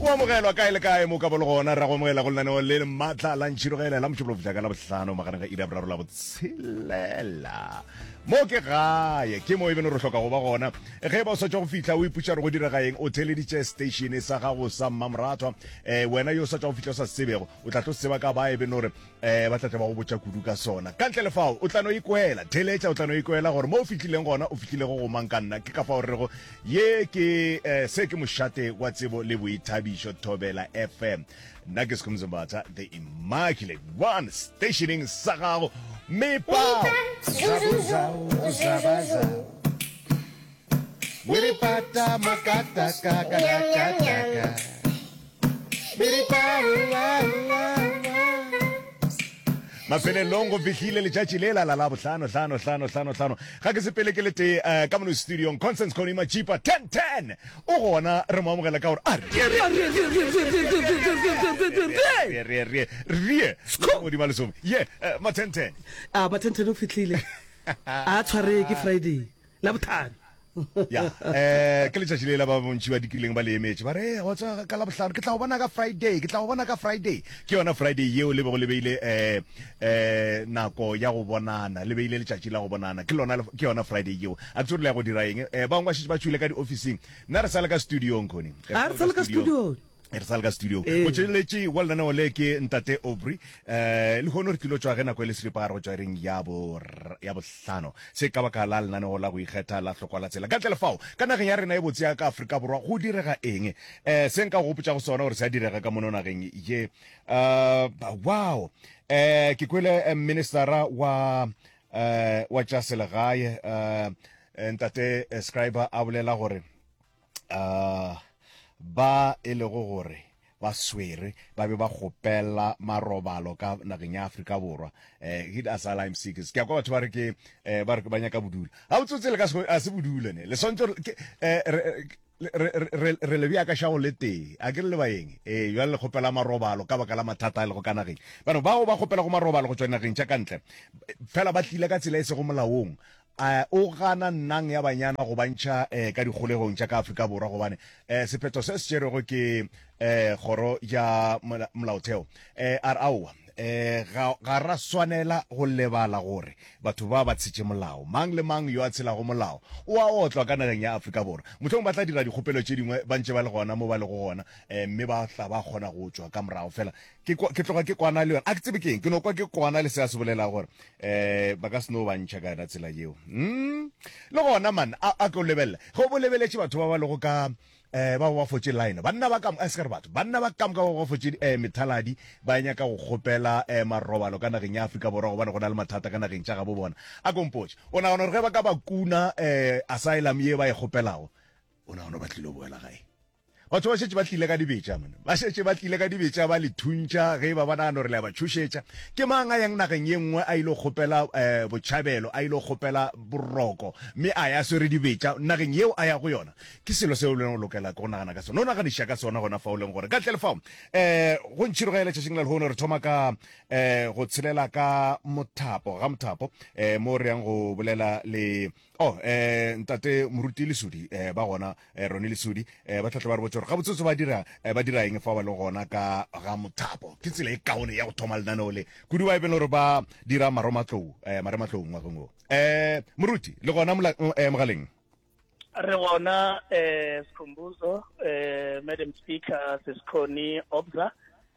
o amogelwa kae le kae mo ka bolo gona ra go amogela go lenaneo le maatla la ntšhirogele la mošupologo fitlha ka la bohlano magareng ga ira boraro la botshelela mo ke gae ke mo e beno re hloka go ba gona ge ba o swatša go fitlha o ipuša re go direga eng o theleditše statione sa gago sa mmamoratwa um wena yo o swatša go fitlha o sa sebego o tla tlo seba ka ba e beno gore Ee, ba tla tla ba go botša kudu ka sona. Ka ntle le fao, o tla no ikwela. Theeletša, o tla no ikwela gore mo o fihlileng gona, o fihlile go go mang ka nna. Ke ka fao re rego, ye ke, eh, se ke mošate wa tsebo le boithabišo, Thobela FM. Nna ke Skhumzo Mbatha, The Immaculate One, stationeng sa gago. Mepao! Zabuza, uzabaza. Miripata makata kaka kaka kaka. Miripata mafelelong go fihlile letšatši le la la la bohlano hlano hlano hlano hlano ga ke sepele ke le tee eh, ka mono studiong constance conima chipa 1010 o gona re mo amogela ka gore a re re re re godima lesome ye eh, ma 1010 a mathentene o fitlhile a tshwaree ke friday la bothani. Ya, eh, ke letšatši le la ba bontši ba dikileng ba le emetše, ba re, ee, go tswa ka la bohlano, ke tla go bona ka Friday, ke tla go bona ka Friday. Ke yona Friday yeo le bego le beile eh, eh, nako ya go bonana, le beile letšatši la go bonana, ke lona, ke yona Friday yeo. A ke tsebe re le ya go dira eng? Eh, bangwe ba šetše ba tšwile ka diofising, nna re sa le ka studiong, Connie. A re sa le ka studiong. e re sa le ka studio motšweletši wa lenaneo le ke ntate obry um le kgone re tlilo tswa ge nako e le selipa go tswa reng ya bohlano se ka baka la lenaneo la go ikgetha la hlokwa la tsela ka tle lefao ka nageng ya rena e botse ya ka aforika borwa go direga eng um se nka go gopotsa go sona gore se a direga ka mono nageng ye um wow um ke kwele ministera wa um wa tša selegae um ntate scriber a bolela gore uh, ba e lego gore ba swere ba be ba kgopela marobalo ka nageng ya Afrika Borwa eh hit asylum seekers ke kwa batho ba re ke eh, ba re ba nyaka bodula ha o tsotse le ka a se bodule ne le swantse eh, re le bjaka shago le tee a ke re le baeng ee jale le kgopela marobalo ka baka la mathata a e lego ka nageng bano bao ba kgopela go marobalo go tswa nageng tša kantle fela ba tlile ka tsela e sego molaong A o gana nnang ya banyana go bantšha eh, ka dikgolegong tša ka Afrika Borwa gobane eh, sephetho se se tšerwego ke eh, kgoro ya molaotheo eh, a re aowa eh, ga, ga ra swanela go lebala gore batho ba ba tshetše molao mang le mang yo a tshelago molao o a otlwa ka nageng ya Afrika Borwa mohlong ba tla dira dikgopelo tše dingwe ba ntše ba le gona mo ba lego gona eh, mme ba tla ba kgona go tšwa ka morago fela ke kwa, ke tloga ke kwana le yona a ke tsebe keng ke no kwa ke kwana le se a se bolela gore eh ba ka se no ba ntšha ka yona tsela yeo mm le gona man a, a tlo lebelela ge bo lebeletše batho ba ba lego ka eh ba ba fotše line banna ba kamoka se re batho banna ba kamoka ba ba fotše eh methaladi ba nyaka go kgopela eh marobalo ka nageng ya Afrika Borwa gobane go na le mathata ka nageng tša ga bo bona a kompotše o nagana gore ge ba ka ba kuna eh asylum ye ba e kgopelago o nagana ba tlilo boela gae Batho ba šetše ba tlile ka dibetša, monna. Ba šetše ba tlile ka dibetša, ba le thuntša ge e ba ba nagana gore le a ba tšhošetša. Ke mang a yang nageng ye nngwe a ile kgopela um botšhabelo, a ile kgopela boroko, mme a ya a swere dibetša nageng yeo a ya go yona? Ke selo seo lena o lokela ke go nagana ka sona. O naganiša ka sona gona fa o leng gore. Ka ntle le fao, um go ntšhiro ge letšatšing la lehono re thoma ka um go tshelela ka mothapo, ga mothapo, um mo re yang go bolela le Oh, eh, ntate moruti lesodi eh, ba gona eh, rone lesodi eh, ba tlatla ba re botse gore gabotsotso ba dira eh, ba dira eng fa ba le gona ka ga mothapo ke tsela e kaone ya go thoma lenaneo le kudu ba e bele gore ba dira maromatlou eh, marematlou ngwageng o eh, moruti le gona mola- mm, eh, mogaleng re gona eh sikhumbuzo eh madam speaker sesikhoni obza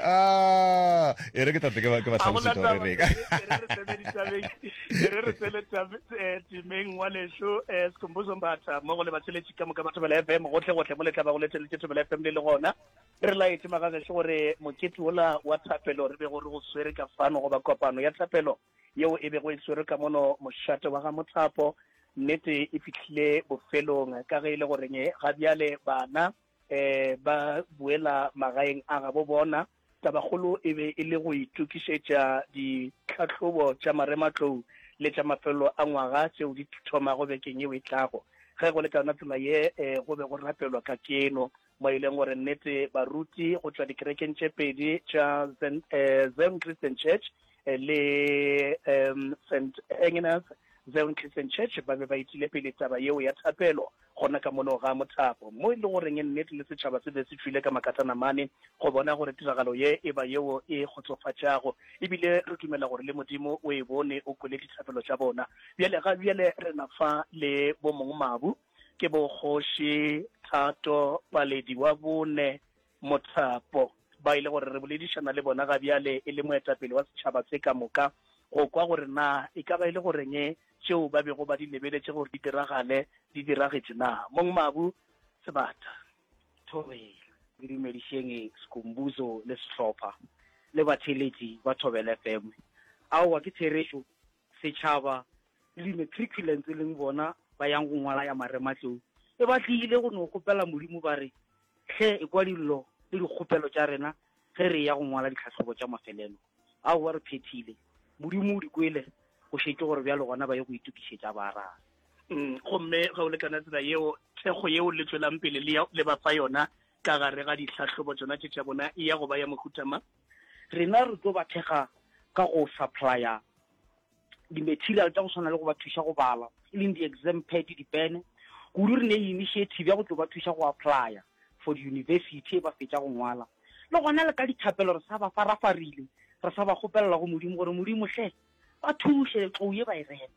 ah e re ke tate ke ba ke ba tlhalosa gore re ka re re tsele timeng wa lesho eh sikhumbuzo mbatha mo go le batsheletsi ka moka batho ba le FM gotlhe gotlhe mo le tla ba go le tsele tso ba FM le le gona re la etse magaga se gore mokete ola wa thapelo re be go re go swere ka fano go ba kopano ya thapelo yeo e be go e swere ka mono moshate wa ga mothapo nnete e fitlhile bofelong ka ge e le goreng ga bjale bana eh, ba boela magaeng a gabo bona tabakgolo e be e le go itokišetša ditlhahlobo tša marematlou le tša mafelelo a ngwaga tšeo di thomago bekeng yeo e tlago ge go le ka yona tsela ye um go be go rapelwa ka keno mo e leng gore nnete baruti go tšwa dikerekeng tše pedi tša zen eh, christian church le um St Agnes Zeon Christian Church ba be ba itile pele taba yeo ya thapelo gona ka mono ga mothapo, mo e le goreng nnete le setšhaba se be se tšwile ka makatana mane go bona gore tiragalo ye e ba yeo e kgotsofatšago. Ebile re dumela gore le Modimo o e bone, o kwele dithapelo tša bona. Bjale ga bjale re na fa le bomongmabu, ke bo Kgoši Thato Paledi wa bone, Mothapo, Ba e le gore re boledišana le bona ga bjale e le moetapele wa setšhaba se ka moka, go kwa gore na e ka ba e le goreng tšeo ba bego ba di lebeletše gore di diragale di diragetše na. Mong Mabu, Sebata, Thobela. Ke dumedišeng Skhumbuzo le sehlopha le batheeletši ba Thobela FM. Aowa ke therešo Setšhaba le di-matriculants e leng bona ba yang go ngwala ya marematlou e ba tliile go no kgopela Modimo ba re, Hle ekwa dillo le dikgopelo tša rena ge re eya go ngwala ditlhahlobo tša mafelelo. Aowa re phethile. Modimo o di kwele, go šetše gore bjalo gona ba ye go itokišetša ba arabe. Mm, gomme ge o lekana tsela yeo thekgo yeo le tšwelang pele le, ya, le ba fa yona ka gare ga ditlhahlobo tšona tše tša bona e ya go ba ya mohuta mang? Rena re tlo ba thekga ka go supplya di-material tša go swana le go ba thuša go bala, e leng di-exam pad, dipene. Kudu re ne le initiative ya go tlo ba thuša go applya for di-university ge ba fetša go ngwala. Le gona le ka dithapelo re sa ba farafarile, re sa ba kgopelela go Modimo gore, Modimo hle, ba thuše tlou ye ba e rema.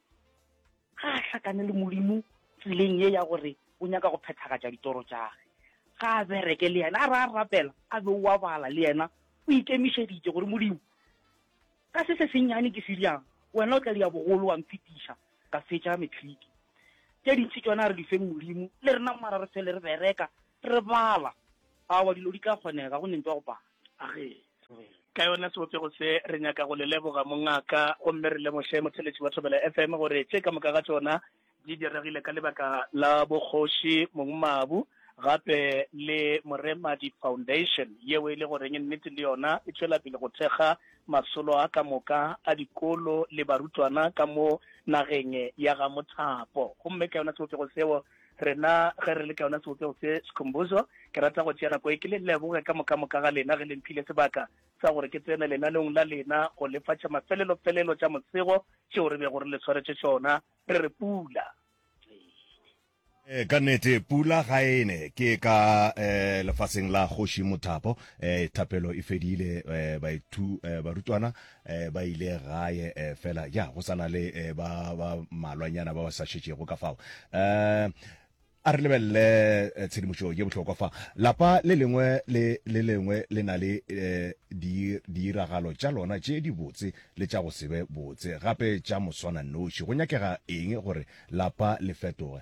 ga a hlakane le modimo tseleng ye ya gore o nyaka go phethagatša ditoro tšage ga a bereke le yena a re a rapela a be oa bala le yena o ikemišeditše gore modimo ka se se sennyane ke se diang wena o tla dia bogolo wa mphetiša ka fetša metliki tše dintši tšona re di feng modimo le rena mara re fele re bereka re bala awa dilo di tla kgonega go nentwa go bala ka yona sebopego se re nyaka go le leboga mongaka gomme re lemoše motheletši wa thobela fm gore tše ka moka ga tšona di diregile ka lebaka la bokgoši mongmabu gape le moremadi foundation yeo e le goreng nnete le yona e tšwela pele go thekga masolo a ka moka a dikolo le barutwana ka mo nageng ya ga mothapo gomme ka yona sebopego seo Rena ge re le ka yona sebopeho se, Sikhumbuzo, ke rata go tšea nako e ke le leboge ka moka-moka ga lena ge le mphile sebaka sa gore ke tsene lenaneong la lena go lefa tša mafelelo-felelo tša mosego tšeo re bego re le swaretše tšona re re pula E, ka nnete pula ga e ne ke ka e, lefaseng la kgoši mothapo e, thapelo e fedile e, baithu e, barutwana eh, ba ile gae eh, fela ya go sana le eh, ba ba malwanyana ba ba sa šetšego ka fao eh, a re lebelele eh, tshedimošo ye bohlokwa fa lapa le lengwe le le lengwe le na le eh, di- diiragalo tša lona tše di botse le tša go sebe botse gape tša moswana noši go nyakega eng gore lapa le fetoge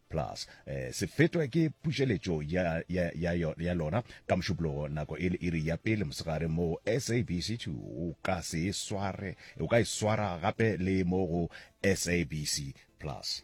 Plus, eh, se fetwe ke pušeletšo ya, ya, ya, ya lona ka mošupologo nako e le iri ya pele mosegare mo SABC2. O ka se e sware, o ka e swara gape le mo go SABC Plus.